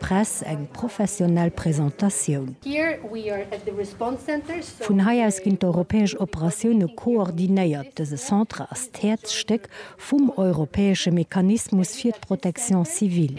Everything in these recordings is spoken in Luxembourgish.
Press eng professionell Presentatioun. Vun hei aus ginn d'europäesch Operatioune koordinéiert. Dëse Centre ass d'Häerzstéck vum europäesche Mechanismus fir d'Protection civile,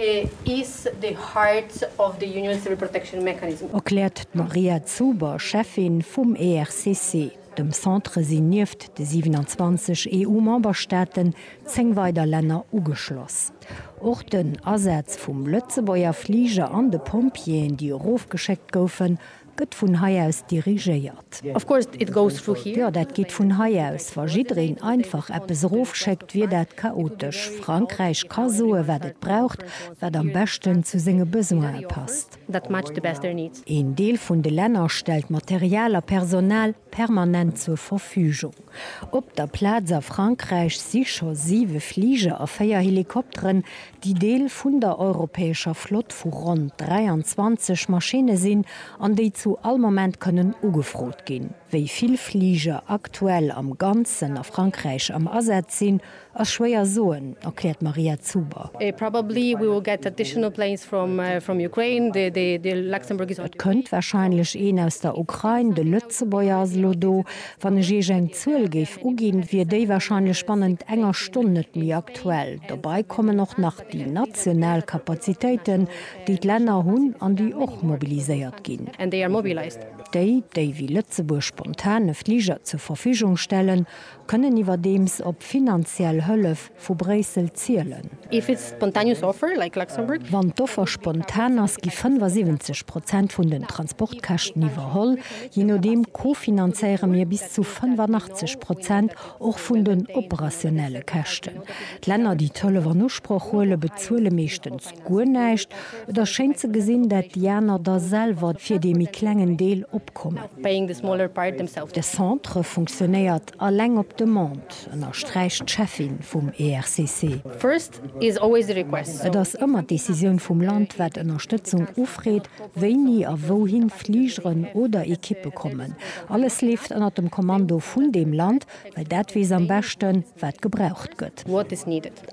erkläert d'Maria Zuber, Cheffin vum ERCC. Dem Centre sinn nieft de 27 EU-Memberstaaten 10 weider Länner ugeschloss. Och den Asaz vum Lëtzebuerger Fliger an de Pompjeeën, déi erofgeschéckt goufen, gëtt vun hei aus dirigéiert. Jo, dat geet vun hei aus. Wa jiddereen einfach eppes erofschéckt, wier dat chaotesch. Frankräich ka soen, wat et braucht, wat am beschten zu senge Besoine passt. Een Deel vun de Länner stellt Material a Personal permanent zur Verfügung. Op der Plaz a Frankräich si scho siwe Fliger a véier Helikopteren, déi Deel vun der europäescher Flott vu ronn 23 Maschinne sinn an déi zu all Moment kënnen ugefrot ginn. Wéi vill Fliger aktuell am Ganzen a Frankräich am Asaz sinn, Ass schwéier soen, erkläert d'Maria Zuber. Et kënnt warscheinlech een aus der Ukrain, de Lëtzebuerger ass elo do. Wann ech Iech eng Zuel géif uginn, wier déi warscheinlech bannent enger Stonn net méi aktuell. Dobei kommen och nach déi national Kapazitéiten, déi d'Länner hunn an déi och mobiliséiert ginn. Déi, déi wéi Lëtzebuerg spontan e Fliger zur Verfügung stellen. Kënnen iwwerdeems op finanziell Hëllef vu Bréissel zielen. If it's spontaneous offer, like Luxembourg. Wann d'Offer spontan ass, gi 75 Prozent vun den Transportkäschten iwwerholl. Je nodeem co-finanzéiere mir bis zu 85 Prozent och vun den operationelle Käschten. D'Länner, déi d'Hëllef an Usproch huelen, bezuele meeschtens Guer näischt. Et ass schéin ze gesinn, dat déi aner da selwer fir dee méi klengen Deel opkommen. De Centre funktionéiert eleng op Demande, ënnersträicht d'Cheffin vum ERCC. Et ass ëmmer d'Decisioun vum Land, wat Ënnerstëtzung ufreet, wéini a wouhin Fligeren oder Ekippe kommen. Alles leeft ënner dem Kommando vun deem Land, well dat weess am beschten, wat gebraucht gëtt.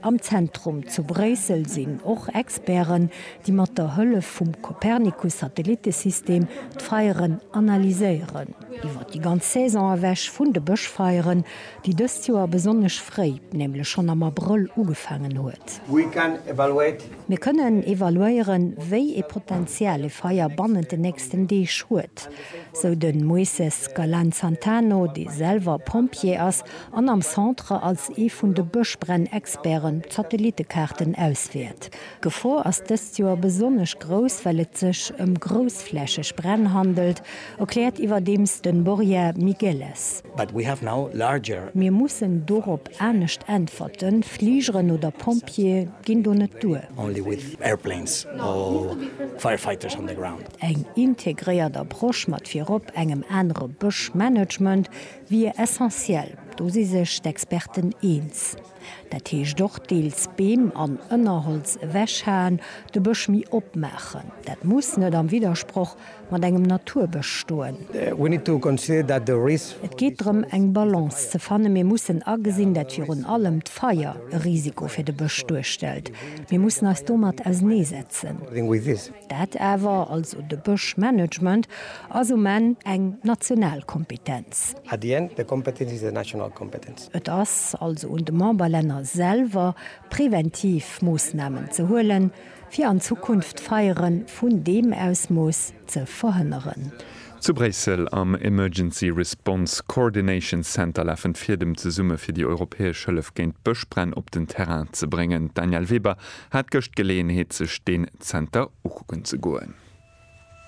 Am Zentrum zu Bréissel sinn och Experten, déi mat der Hëllef vum Copernicus-Satellitesystem d'Feieren analyséieren. Iwwer déi ganz Saison ewech vun de Bëschfeieren, déi dëst Joer besonnesch fréi, nämlech schonn am Abrëll ugefaangen huet. Mir kënnen evaluéieren, wéi ee Potenzial e Feier bannent den nächsten Deeg huet, sou de Moises Galan-Santano, dee selwer Pompjee ass an am Centre als ee vun de Bëschbränn-Experten d'Satellitekaarten auswäert. D'Gefor ass dëst Joer besonnesch grouss, well et sech ëm groussflächeg Bränn handelt, erkläert iwwerdeems de Borja Migueles. Mir mussen dorop anescht äntwerten, Fligeren oder Pompjeeë ginn do net duer. Eng integréiert Approche mat virop engem anere Bëschmanagement, Wier essentiell, do si sech d'Experten eens. Dat heescht och deels Beem an Ënnerholz ewechhaen, de Bësch méi opmaachen. Dat muss net am Widdersproch mat engem Naturbësch stoen. Et geet drëm eng Balance ze fannen. Mir mussen agesinn, dat virun allem d'Feier e Risiko fir de Bësch duerstellt. Mir mussen eis domat auseneesetzen. Dat awer, also de Bëschmanagement, ass um Enn eng national Kompetenz. At the end, the competence is a national competence. Et ass also un de Memberlänner selwer, präventiv Moossnamen ze huelen, fir an Zukunft d'Feiere vun deem Ausmooss ze verhënneren. Zu Bréissel am Emergency Response Coordination Center lafen d'Fiedem zesumme fir déi europäesch Hëllef géint Bëschbränn op den Terrain ze bréngen. D'Danièle Weber. Hat gëscht Geleeënheet sech deen Zenter ukucken ze goen.